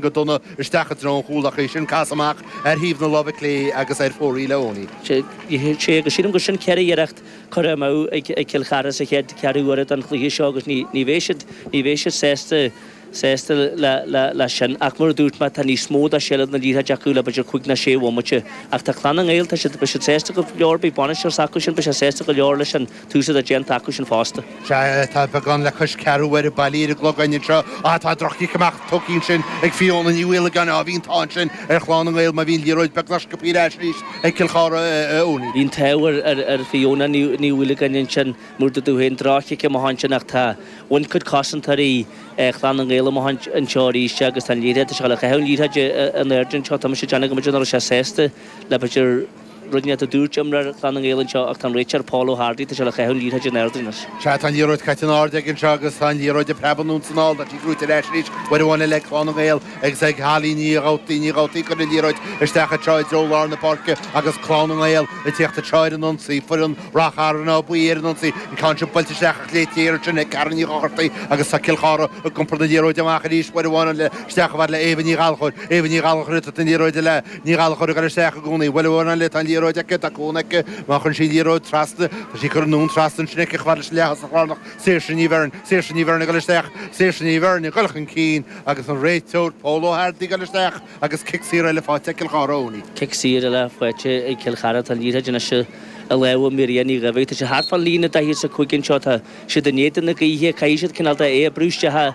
go dona isteach i dtreo an chúil, ach é sin casadh amach ar thaobh na láimhe clé agus ar fóraoil, a Eoin. Sea, agus sílim gur sin ceithre iarracht curtha amú ag Cill Chartha sa chéad cheathrú uaire den chluiche seo agus ní bheidh siad, ní bheidh siad sásta, sásta leis sin. Ach mar a dúirt mé, tá níos mó de sheilbh na liathróide acu le b'fhéidir cúig nó sé bhomaite. Ach tá Clann na nGael, tá siad, beidh siad sásta go leor, beidh bainisteoir s'acu sin, beidh sé sásta go leor leis sin. Tús atá déanta acu sin fosta. Sea, tá beagán le cois ceathrú uaire bailí ar an gclog againn anseo. Á, tá droch-chic amach tugtha ansin ag Fiona Ní Mhaolagáin. Á, bhí an t-ádh ansin ar Chlann na nGael mar bhí an liathróid beagnach buaite ar ais arís ag Cill Chartha. Bhí an t-ádh ar Fiona Ní Mhaolagáin ansin, mar, mar a dúirt tú, droch-chic amach ansin, ach tá. Bhain cuid cosantóirí Chlann na nGael amach anseo arís agus tá an liathróid seo le caitheamh. An liathróid in airde anseo, tá mise ag déanamh go mb'fhéidir nach raibh sé sásta le b'fhéidir. rud éicint a dúirt imreoir Chlann na nGael anseo ach tá an réiteoir, Pól Ó hArdaigh, tá sé le caitheamh an liathróid in airde anois. Sea, tá an liathróid caite in airde aige anseo agus tá an liathróid ag preabadh anonn 's anall, tá sí buaite ar ais arís, uair amháin eile ag Clann na nGael agus ag Holly Ní Dhabhtaí, Ní Dhabhtaí ag cur an liathróid isteach anseo i dtreo lár na páirce agus Clann na nGael ag tíocht anseo ar an ionsaí, foireann Ráth Chairn Áth Buí ar an ionsaí, an ceann seo buailte isteach ach léite ansin ag Karen Ní Dhochartaigh agus tá Cill Chartha ag iompar na liathróide amach arís, uair amháin eile isteach chomh fada le Éabha Ní Ghallchóir, Éabha Ní Ghallchóir ag tabhairt an liathróide léi. Ní Ghallachóir a chur isteach i gcónaí. Bhuel, uair amháin eile tá an liathróid aici, tá cúnamh aici, má chuireann sí an liathróid trasna, tá sí ag dul anonn trasna ansin aici, chomh fada leis an leath-thosach lárnach. Saoirse Ní Bheirn. Saoirse Ní Bheirn ag dul isteach. Saoirse Ní Bheirn ag dul chun cinn agus an réiteoir, Pól Ó hArdaigh, ag dul isteach agus cic saor eile faighte ag Cill Chartha Eoiní. Cic saor eile faighte ag Cill Chartha. Tá an liathróid anois i lámha Mairia Ní Dhaibhín. Tá sí thart fán líne 45 anseo. Tá siad in éadan na gaoithe. Caithfidh siad cineál de é a bhrú isteach a.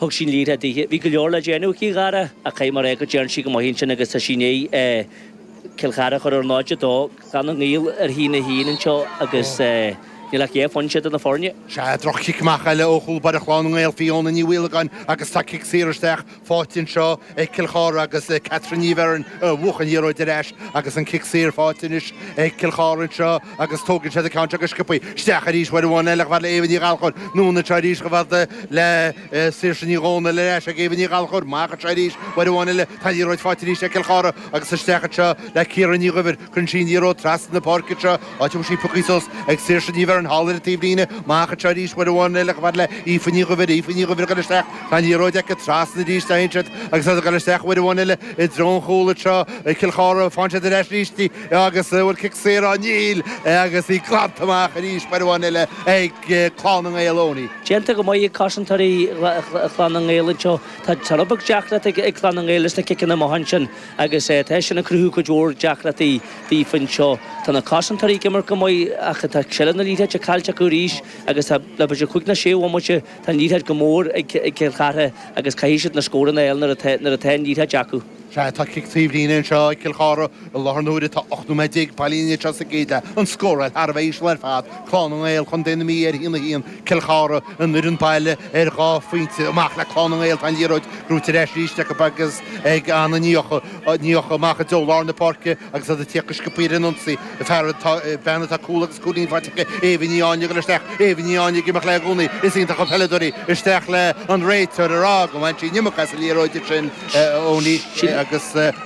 Thug sí an liathróid dithe. Bhí go leor le déanamh aici, a Dhara, ach caithfidh mé a rá go dtearn sí go maith ansin agus tá sí i ndiaidh Cill Chartha a chur ar 0-2 Clann na nGael ar a haon a haon anseo agus níl ach dhá phointe idir na foirne. Sea, droch-chic amach eile ó chúlbaire Chlann na nGael, Fiona Ní Mhaolagáin agus tá cic saor isteach faighte anseo. ag Cill Chartha agus le Catherine Ní Bheirn a bhuaigh an liathróid ar ais agus an cic saor faighte anois ag Cill Chartha anseo agus tógann siad an ceann seo go sciobtha isteach arís uair amháin eile, chomh fada le Éabha Ní Ghallchóir anonn anseo arís chomh fada le Saoirse Ní Dhomhnaill ar ais ag Éabha Ní Ghallchóir amach anseo arís uair amháin eile, tá an liathróid faighte arís ag Cill Chartha agus isteach anseo le Ciara Ní Dhuibhir. Cuireann sí an liathróid trasna na páirce seo, áit a bhfuil sí pioctha suas ag Saoirse Ní Bheirn thall ar an taobhlíne. Amach anseo arís, uair amháin eile chomh fada le Aoife Ní Dhuibhir, Aoife Ní Dhuibhir ag goil isteach, tá an liathróid aici, trasna arís a théann siad agus iad ag goil isteach, uair amháin eile i dtreo an chúl anseo ag Cill Chartha, faigheann siad ar ais arís di agus bhuel cic saor á Níl agus í glanta amach arís, uair amháin eile ag Clann na nGael, Eoiní. Déanta go maith ag cosantóirí Chlann na nGael anseo, tá rud beag deacracht ag Clann na nGael leis na ciceanna amach ansin. Agus tá sin ag cruthú cuid mhór deacrachtaí daofa anseo. Tá na cosantóirí ag imirt go maith ach tá seilbh na liathróide caillte acu arís agus tá le b'fhéidir cúig ná sé bhomaite tá an liathróid go mór ag Cill Chartha agus caithfidh siad na scóranna fháil nuair atá nuair atá an liathróid acu. Sea, tá cic taobh líne anseo ag Cill Chartha i láthair na huaire. Tá 18 nóiméad bailithe anseo sa gcéad leath, an scóráil thar a bheith íseal ar fad. Clann na nGael, Co na Mí ar a haon a haon, Cill Chartha, an fhoireann baile ar dhá phointe amach le Clann na nGael, tá an liathróid brúite ar ais arís acu agus ag Anna Ní Eochaidh amach i dtreo lár na páirce agus iad ag tíocht go sciobtha ar an ionsaí. fear, tá bean atá cúl agus cúilín faighte aici, Aoibhinn Ní Áinlí ag goil isteach, Aoibhinn Ní Áinlí ag imeacht léi i gcónaí, is iontach an peileadóir í, isteach léi, an réiteoir ag rá gur bhain sí an iomarca as an liathróid sin Eoin agus.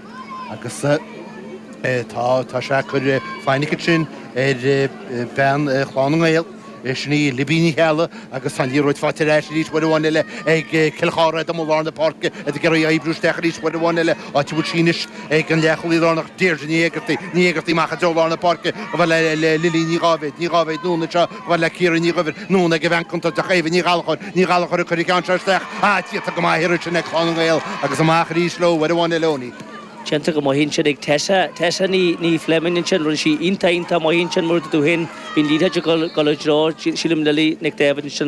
Agus tá, tá sé ag cur fainic ansin ar bhean Chlann na nGael, sin í Libby Ní Cheallaigh, agus tá an liathróid faighte ar ais arís uair amháin eile ag Cill Chartha i lár na páirce, iad ag iarraidh oibriú isteach arís uair amháin eile, áit a bhfuil sí anois ag an leathchúlaí lárnach Deirdre Ní Éigeartaigh, Ní Éigeartaigh amach i dtreo lár na páirce, Lily Ní Dháibhéid, Ní Dháibhéid anonn anseo, A fhad le Ciara Ní Dhuibhir, anonn ag event cuntas de Chaoimhe Ní Ghallachóir, Ní Ghallachóir ag cur an cheann seo isteach, ach déanta go maith ansin ag Clann na nGael agus amach arís leo, uair amháin eile Eoin. Déanta go maith ansin ag Tessa, Tessa Ní Fleming ansin, rinne sí iontach iontach maith ansin, mar a dúirt tú féin, bhí an liathróid ag dul i dtreo, sílim, Lily Nic Daibhid ansin.